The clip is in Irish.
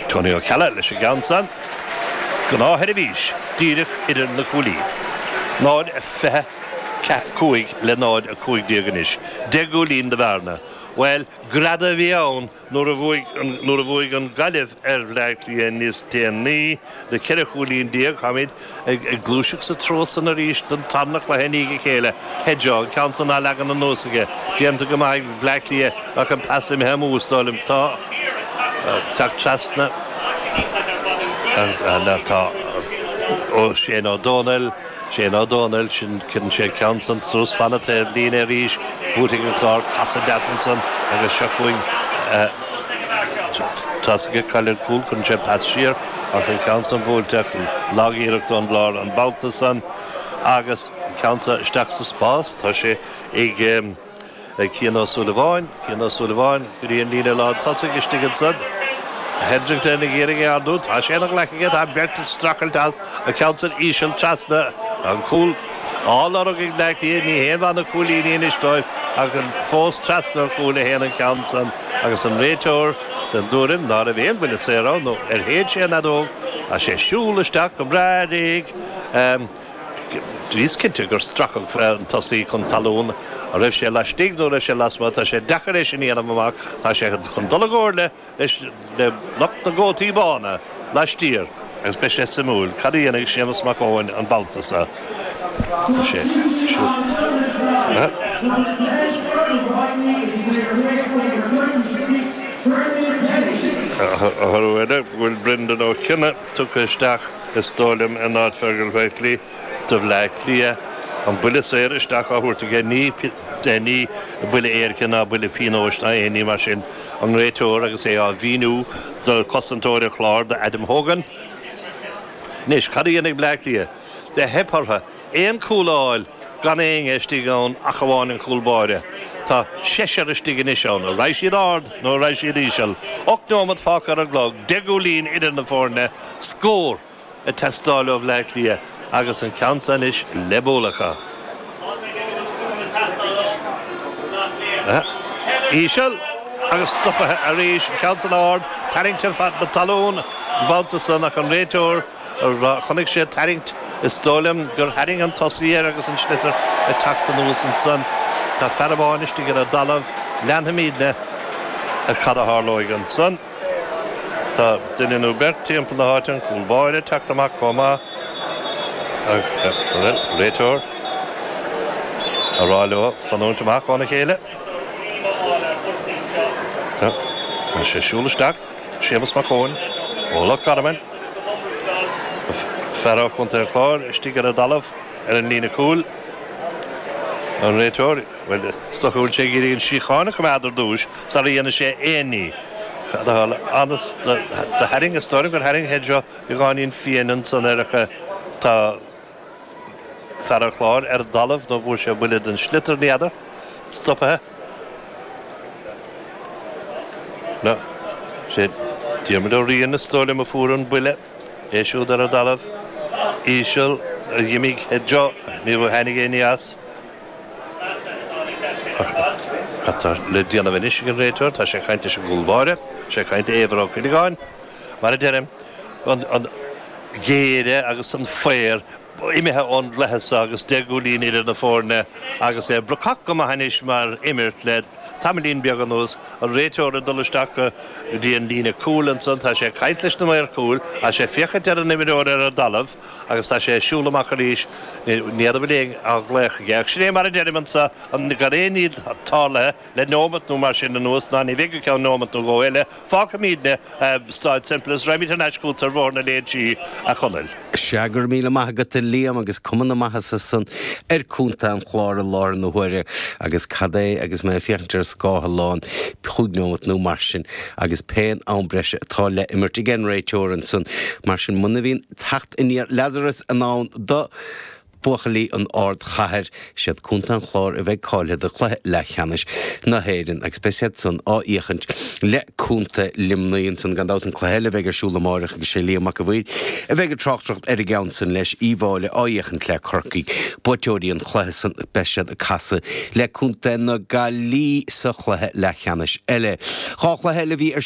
Tony Ó Ceallaigh leis an gceann san. Gnáthsheirbhís díreach idir na cuaillí. 0 a 25 le 0 a 15 anois. Deich gcúilín de bhearna. Bhuel, greadadh a bhí ann nuair a bhuaigh an Gaillimh ar Bhleá Cliath níos déanaí. Le ceithre chúilín déag táimíd ag gluaiseacht sa treo san arís don tarna cluiche i ndiaidh a chéile. Hedgo, an ceann san á leagan anuas aige. Déanta go maith ag Bleá Cliath ach an pas imithe amú is dóigh liom. Tá tagtha trasna ag Shane Ó Domhnaill. Shane Ó Domhnaill, sin, cuireann sé an ceann san suas, fan na taobhlíne arís, buaite ag an gClár casadh deas ansan agus seo chugainn tosaigh ag cailleadh cúl, cuireann sé pas siar ach an ceann san buailte ach lagiarracht ón gClár an babhta san agus an ceann san isteach sa spás, tá sé ag. ag Cian Ó Súilleabháin, Cian Ó Súilleabháin go dtí an líne lántosaigh, istigh ansan, Hetherton ag iarraidh é ardú, tá sé ina ghlaic aige, tá beirt ag streachailt as, an ceann san íseal trasna, an cúl á lorg ag na hÁth Cliathaigh, ní haon mhaith na cúilíní anois dóibh ach fós trasna an chúil a théann an ceann san agus an réiteoir den dtuairim ná raibh aon bhuille saor ann nó ar shéid sé an fheadóg is é ag siúl isteach go breá réidh Bhíos cinnte gur stracadh an tosaí chun talún. An raibh sé laistigh nó an raibh sé lasmuigh, tá sé deacair é sin a dhéanamh amach. Tá sé chun dul i gcomhairle le le lucht na gcótaí bána laistiar agus beidh sé suimiúil cad a dhéanfaidh Séamus Mac Eoin an babhta so, chím go bhfuil Brendan Ó Cionnaith. tugtha isteach is dóigh liom in áit Fergal Whitely do Bhleá Cliath. An buille saor isteach á thabhairt aige, ní buille éirice ná buille pionóis ná aon ní mar sin. An réiteoir agus é á mhíniú do chosantóir an Chláir, do Adam Hogan. Anois, cad a dhéanfaidh Bleá Cliath? Theip orthu. aon chúl a fháil gan éinne istigh ann ach amháin an cúl báire. Tá seisear istigh anois ann. An raghaidh siad ard nó an raghaidh siad íseal? Ocht nóimeat fágtha ar an gclog, deich gcúilín idir na foirne, scór ag teastáil ó Bhleá Cliath agus an ceann seo anois le bualadh acu. Íseal agus stoptha arís, an ceann san ard, tarraingte chun na talún an babhta san ach an réiteoir, Chonaic sé tarraingt. Is dóigh liom gur tharraing an tosaí air agus an sliotar ag teacht anuas ansan. Tá fear amháin istigh ar an dtalamh. Leanfaimídne ar cad a tharlóidh ansan. Tá duine nó beirt timpeall na háite, an cúl báire ag teacht amach comh maith agus bhuel, réiteoir a rá leo fanúint amach óna chéile. Tá sé ag siúl isteach. Séamus Mac Eochaidh, ó Loch Garman, fear ó Chontae an Chláir, istigh ar an dtalamh ar an líne chúil. An réiteoir, Bhuel, is dócha go bhfuil sé ag iarraidh an síocháin a choimeád ar dtúis sara dhéanfaidh sé aon ní. Conas a tharla? Do tharraing, is dóigh liom gur tharraing Hedgerow beagáinín fiain ansan air ach tá, Fear an Chláir ar an dtalamh nuair bhfuair sé buille den sliotar. N'fheadar. Stopaithe. No. Sé Diarmuid Ó Riain is dóigh liom a fuair an buille. É siúd ar an dtalamh. Íseal. Dh'imigh Head Joe. Ní tháinig éinne as. Cad tá le déanamh anois ag an réiteoir. Tá sé ag caint leis an gcúl báire. Tá sé ag caint le Éibhear Ó Cuileagáin. Mar a deirim, an géire agus an faor imithe ón gcluiche so agus deich gcúilín idir na foirne agus é brocach go maith anois mar imirt le tamaillín beag anuas. An réiteoir ag dul isteach go dtí an líne cúil ansan. Tá sé ag caint leis na maoir cúil. Tá sé ag féachaint ar an imreoir ar an dtalamh agus tá sé ag siúl amach arís. Ní fheadar bhfuil éinne á ghlaoch aige. Ach sin é mar a deirim anso, gan aon ní tarlaithe. Le neomat nó mar sin anuas, ná ní bheidh go ceann neomat nó dhó eile, fágfaimídne a' Stáid Semple is raghaimíd thar n-ais chútsa ar bhóthar na Léinsí, a Chonaill. Sea, go raibh míle maith agat, a Liam, agus cuma na maitheasa ansan ar Chontae an Chláir i láthair na huaire, agus cad é, agus mé ag féachaint ar an scáileán, chúig neomat nó mar sin, agus pén am breise atá le imirt aigen réiteoir ansan, mar sin, muna bhíonn teacht aniar Lazaras in ann do, Buachaillí an Ardchathair, is iad Contae an Chláir a bheidh cáilthe do chluiche leathcheannais na hÉireann agus beidh siad san á fhéachaint le Contae Luimnigh ansan. Gan dabht an cluiche eile a bheidh ar siúl amáireach agus sé Liam Mac an Mhaoir a bheidh ag tráchtaireacht ar an gceann san leis, Uíbh Fhailí á fhéachaint le Corcaigh, buaiteoirí an chluiche san, beidh siad ag casadh le Contae na Gaillí sa chluiche leathcheannais eile. Dhá chluiche eile a bhí ar siúl.